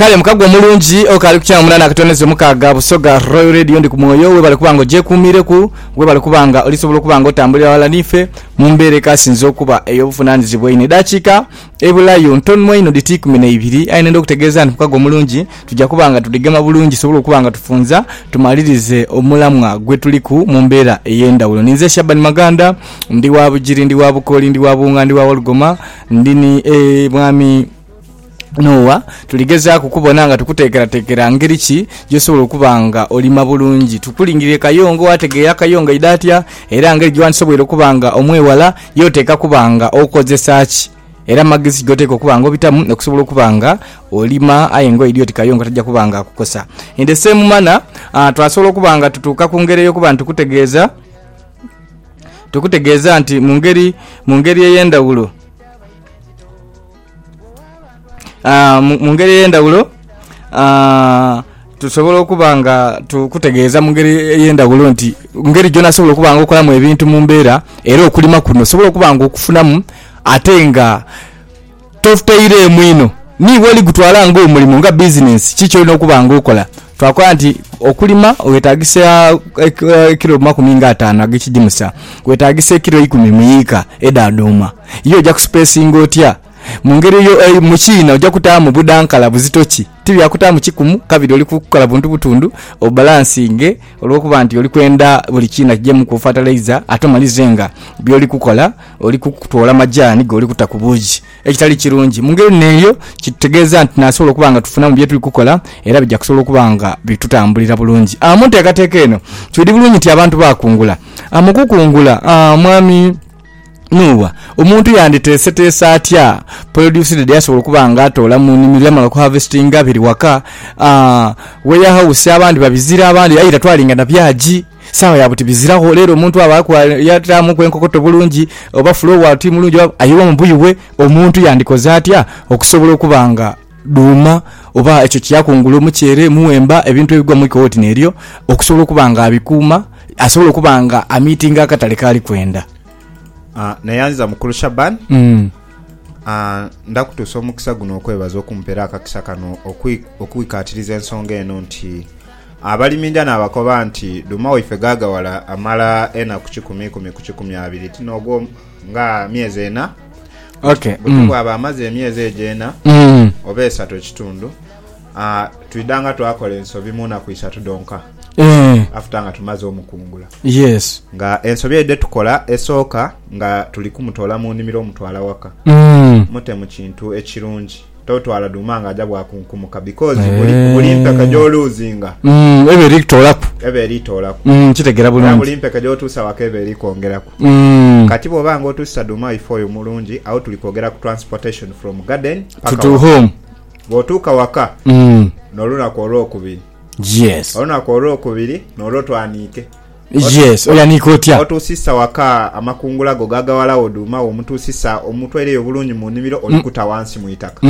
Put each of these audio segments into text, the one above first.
kale mukago omulungi okaali ku kyamu munana akatono ezo mukaaga busoga royal radio ndi ku mwoyo webale kuba nga ogyekuumireku webale kuba nga olisobola okuba nga otambulira wala niife mu mbeera ekasinze okuba ey'obuvunaanyizibwa ino edaakiika ebulayo ntonmu einho dhiti ikumi na ibiri aye nenda okutegeeza nti mukago omulungi tujja kuba nga tudhigema bulungi tusobole okuba nga tufunza tumalirize omulamwa gwe tuliku mu mbeera ey'endawulo ninze shabani maganda ndi wa bugiri ndi wa bukoli ndi wa buwunga ndi wa wolugoma Ndi ni, e, Mwami Noah, tuligezaaku kubona nga tukuteekerateekera ngeri ki gy'osobola okuba nga olima bulungi. Tukulingirire Kayongo waategeera Kayongo aidha atya, era ngeri gyewandisoboire okuba nga omwewala, ye oteekwa kuba nga okozesa ki, era magezi ki g'oteekwa okuba nga obitamu okusobola okuba nga olima, aye nga oidhi oti Kayongo taja kuba nga akukosa. In the same manner, a, twasobola okuba nga tutuuka ku ngeri ey'okuba nitukutegeeza. Tukutegeeza nti mu ngeri, mu ngeri ey'endhawulo, ah, mu mu ngeri ey'endhawulo ah, tusobola okuba nga tukutegeeza mu ngeri ey'endhawulo nti mu ngeri gyona osobola okuba nga okolamu ebintu mu mbeera era okulima kuno osobola okuba nga okufunamu ate nga... Totutaireemu inho ni bw'oli gutwala ng'omulimo, nga bizinensi, ki ky'olina okuba ng'okola. Twakola nti okulima weetaagisa ekilo makumi nga ataanu ag'ekigimusa, weetaagisa ekilo eikumi mu yiika edha dhuuma. Ye oja kusipeesinga otya? Mu ngeri eyo, mu kiina oja kutaamu budhankala buzito ki? Ti bya kutaamu kikumu, kabiri oli kukola buntu butundhu obalansinge olw'okuba nti oli kwenda buli kiina kijeemuku fatalaiza ate omalizenga by'oli kukola. Oli kutoola majaani goli kuta ku buugi, ekitali kirungi. Mu ngeri n'eyo, kitutegeeza nti tunaasobola okuba nga tufuna mu bye tuli kukola era bija kusobola okuba nga bitutambulira bulungi. Mu nteekateeka eno, twidhi bulungi nti abantu baakungula. Mu kukungula, Mwami Nuuwa, omuntu yanditeeseteese atya polodyusi dhe yasobola okuba ng'atoola mu nimiro yamala okuhaavesitinga biri waka, weyahawusi abandi babizira abandi aye tatwalinga na byagi? Sawa ya buti biziraho lero omuntu abaaku ayataamuku enkokoto bulungi oba fule obwaalu ti mulungi oba aye oba mubuyi bwe omuntu yandikoze atya okusobola okuba nga dhuuma oba ekyo kye yakungula omuceere, muwemba ebintu ebigwa mu ikooti n'eryo okusobola okuba nga abikuuma asobole okuba nga amiitinga akatale k'ali kwenda. Ah, neyanziza mukulu Shaban. Mm. Ah, ndakutuusa omukisa guno okwebaza okumpera akakisa kano okwi- okwikatiriza ensonga eno nti Abaliminja naabakoba nti, Dhuuma waife ghaagawala amala enaku kikumi ikumi ku kikumi abiri, ti n'ogwo nga myezi ena? Buti bwaba amaze emyezi egyo ena oba esatu ekitundu, twidhanga twakola ensobi mu naku isatu dhonka afuta nga tumaze omukungula. Nga ensobi eyo dhe tukola esooka nga tuli kumutoola mu nimiro omutwala waka, mute mu kintu ekirungi. totwala dhuma nga aja bwakunkumuka because buli buli mpeke gy'oluuzinga Mm, eba eri kutoolaku. eba eri toolaku Mm, nkitegera era buli bulungi. mpeke gy'otuusa waka eba eri kwongeraku. Mm, Kati bw'oba nga otuusa dhuuma ife oyo mulungi awo tuli kwogera ku transportation from garden to, paka to waka. home. Bw'otuuka waka Mm, n'olunaku olwokubiri yes. olunaku olwokubiri n'olwo twaniike Yes oyanika otya. Otuusisa waka amakungula go gagawalagho dhuuma wo omutuusisa omutwaireyo obulungi mu nnhimiro olikuta wansi mu itaka.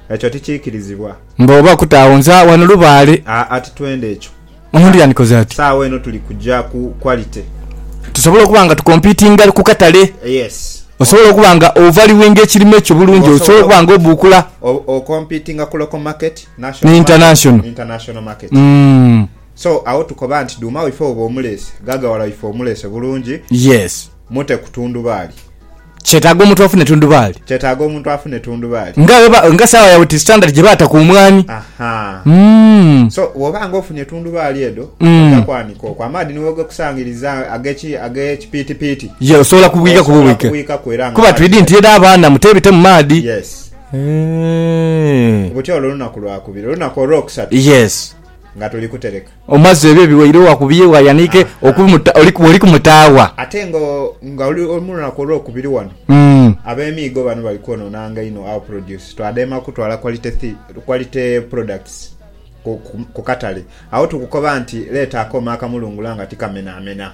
Ekyo tikiikirizibwa. Mbu oba kuta agho nze agho ghano lubaale. Aa titwenda ekyo. Omuntu yandikoze ati. Sawa eno tuli kuja ku quality. Tusobole okuba nga tukompitinga ku katale. Yes. Osobole okuba nga ovaluinga ekirime kyo bulungi osobole okuba nga obuukula. Okompitinga ku local market, national market, international market. So agho tukoba nti dhuuma waife woba omuleese, ghaaghawala waife omuleese bulungi, Yes. mute ku tundubaali. Kyetaaga omuntu afune tundubaali. Kyetaaga omuntu afune tundubaali. Nga bweba, nga saawa yawe ti standard gye baata ku mwaani. Ahaa. Umm. So bwoba nga ofunye tundubaali edho, Mm. oja kwaanika okwo. Amaadhi ni bwegakusangiriza ag'eki, ag'ekipiitipiiti, Ye osobola kubwiika ku osobola bubwike. kubwiikaku era nga Kuba amaadhi twidi nti gakya. era abaana muteebite mu maadhi. Yes. Eehh. Buti olwo lunaku lwakubiri. Olunaku olwokusatu. Yes. nga tuli kutereka. Omaze ebyo ebiwaire wakubye wayanike oli kumutaagha. Ate nga oli mu lunaku olwokubiri wano abemiigo bano bali kwonoonanga inho our produce. Twadema kutwala quality products ku katale agho tukukoba nti leeta akooma akamulungula nga tikamenamena.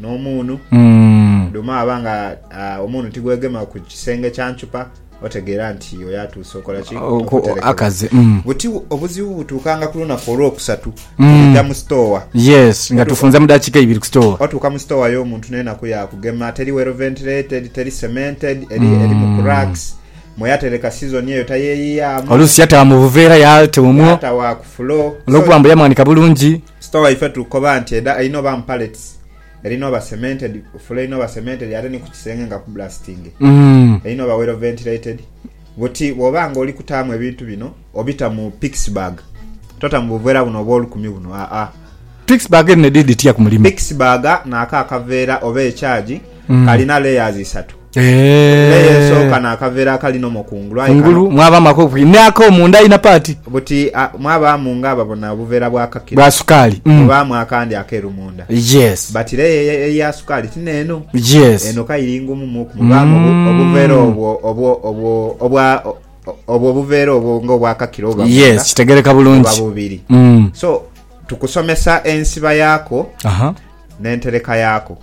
N'omuunu, dhuma aba nga omuunu tigwegema ku kisenge kya nthupa, otegeera nti oyo atuuse okola ki? Okuterekebwa. Buti obuzibu butuukanga ku lunaku olwokusatu tuja mu sitoowa. Yes, nga tufunze mu dakiika ibiri ku sitoowa. Otuuka mu sitoowa y'omuntu n'enaku yaakugema, teri well ventilated, teri cemented, erimu cracks, mwe yatereka sizoni eyo tayeeyiyaamu. Oluusi yata mu buveera yaata omwo olwokuba mbu yamwanika bulungi. Store waife tukoba nti eda erina oba mu pallets, erina oba cemented, fula erina oba cemented ate ni ku kisenge nga kublastinge. Erina oba well ventilated. Buti bwoba nga oli kutaamu ebintu bino obita mu pixy bag, tota mu buveera buno obw'olukumi buno aa. Pixy bag dhino edhiri dhitya ku mulimo? Pixy bag naako akaveera oba ekyagi kalina layers isatu. Leya esooka n'akaveera akali nomo ku ngulu, aye kano mwabaamu ak'okubiri n'akomunda aina paati. Buti mwabaamu ng'ababona obuveera bwa kakiro. Bwa sukaali. Mubaamu akandi akeeru munda. Yes. But leya eya sukaali ti n'eno. Yes. Eno ka iri ngumu muku. Mubaamu obuveera obwo obwo obwo obwa obwo obuveera obwo ng'obwa kakiro oba munda. Yes, kitegeereka bulungi. Buba bubiri. So tukusomesa ensiba yaako. Aha. n'entereka yaaku.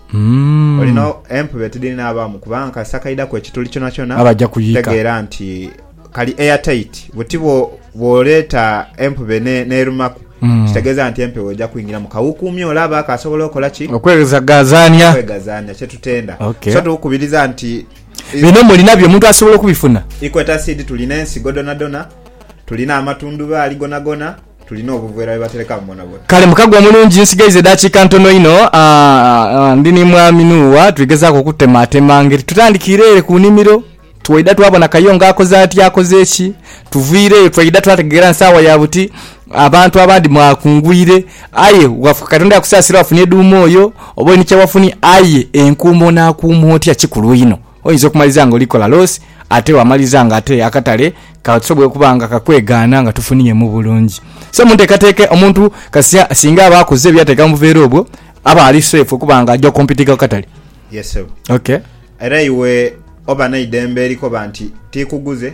Olina empube tidhinaabaamu kubanga kasita kaidhaku ekituli kyonakyona tegeera nti kali airtight. Buti bw'oleeta empube n'erumaku kitegeeza nti empewo eja kwingiramu. Kawukuumye olaba kaasobola okola ki? Okweghazaanya. Okweghazaanya kyetutenda. So tukukubiriza nti. Bino mulinabyo omuntu asobola okubifuna? Equator Seed tulina ensigo dhonadhona, tulina amatundhubaali gonagona. Tulina obuveera bwe baterekamu bonabona. Kale mukago omulungi, nsigaiza edaakiika ntono inho. Ndi ni Mwami Nuuwa tuli gezaaku okutemaatema ngeri. Tutandikiire ere ku nimiro, twaidha twabona Kayongo akoze ati akoze ki. Tuviireyo twaidha twategeera nsaawa ya buti, abantu abandi mwakungwire. Aye wafuka Katonda yakusaasira wafunye dhuuma oyo, oba oli ni kye wafunye, aye enkuuma onaakuuma otya kikulu inho. Oyinza okumaliza nga oli kola loss ate wamaliriza nga ate akatale kasobwoire okuba nga kakwegaana nga tofuniye mu bulungi. So munteekateeka omuntu kasita singa aba akoze ebyateeka mu buveera obwo aba ali safe okuba nga aja okompitinga ku katale. Yes sebo. Okay. Era iwe oba neidembe erikoba nti tikuguze.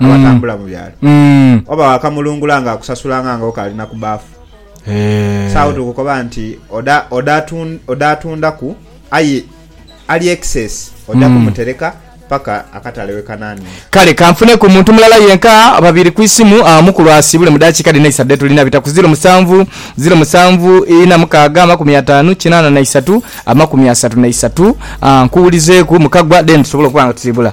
Mm. abatambula mu byalo Mm. oba wakamulungula nga akusasulanga nga okalina ku baafu Eh. saawo tukukoba nti oda oda atun- oda atundaku aye ali excess oja Mm. kumutereka paka akatale wekanani Kale kanfune ku muntu mulala yenka oba babiri ku isimu ah, mukulu asiibule mu dakiika dhino eisatu dhe tulina bita ku ziro musanvu ziro musanvu ina mukaaga amakumi ataanu kinaana na isatu amakumi asatu na isatu ah, nkuwulizeeku mukagwa then tusobole okuba nga tusiibula.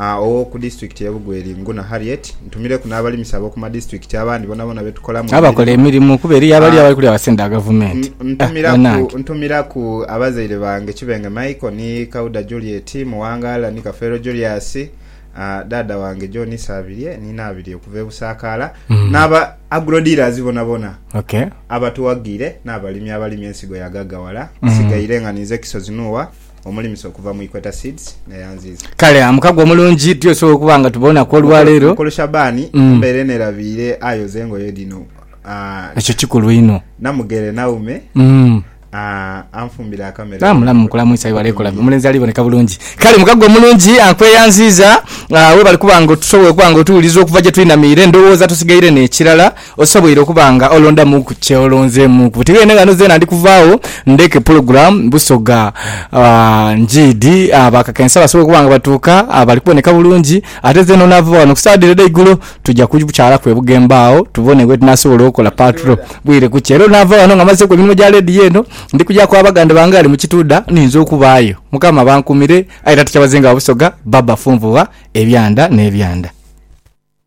ow'oku disitulikiti y'e Bugweri, Nguna Harriet, ntumireku n'abalimisa ab'oku madisitulikiti abandi bonaboona be tukolamu emirimu. Abakola emirimu kuba eriyo abali abali kulya basente dha Gavumenti. Ntumiraku ntumiraku abazaire bange Kibenge Michael ni Kauda Juliet, Muwangala ni Kafeero Julius, dhaadha wange John Isabirye ni Naabirye okuva e Busaakaala, n'aba Agro Dealers bonaboona abatuwagiire n'abalimi abalima ensigo ya Ghagawala. Nsigaire nga ninze Kisozi Nuuwa. Omulimisa okuva mu Equator Seeds nga yanziiza. Kale amukago omulungi tuyo tusobola okuba nga tubonaku olwaleero. Mukulu Shabani mm. mbeere nerabiire ayoze engoye dhino. Ah, Ekyo kikulu inho. Namugere Naume mm. Ah, anfumbira akamere. Ah, mulamu mukulamwisa ibale kola omulenzi ali boneka bulungi. Kale mukago omulungi akweyanziiza ah, webale kuba nga otusobola okuba nga otuwuliza okuva gye twinamiire ndowooza tosigaire n'ekirala. Osoboire okuba nga olondamu ku kye olonzeemuuku. Buti beene ghano zeena ndi kuvaagho ndheke pulogulaamu Busoga Ngiidi abakakensa basobole okuba nga batuuka bali kuboneka bulungi. Ate zeena onaava ghano ku saadha ere edheigulo tuja kukyalaku e Bugembe agho tubone bwetunasobola okola patro bwire kukya. Era onaava ghano nga mmazeeku emirimo gya leediyo eno, ndi kujaku abaganda bange aghali mu Kituudha niyinza okubaayo. Mukama abankuumire aye era tukyabazenga Busoga Baba Funvugha ebyanda n'ebyanda.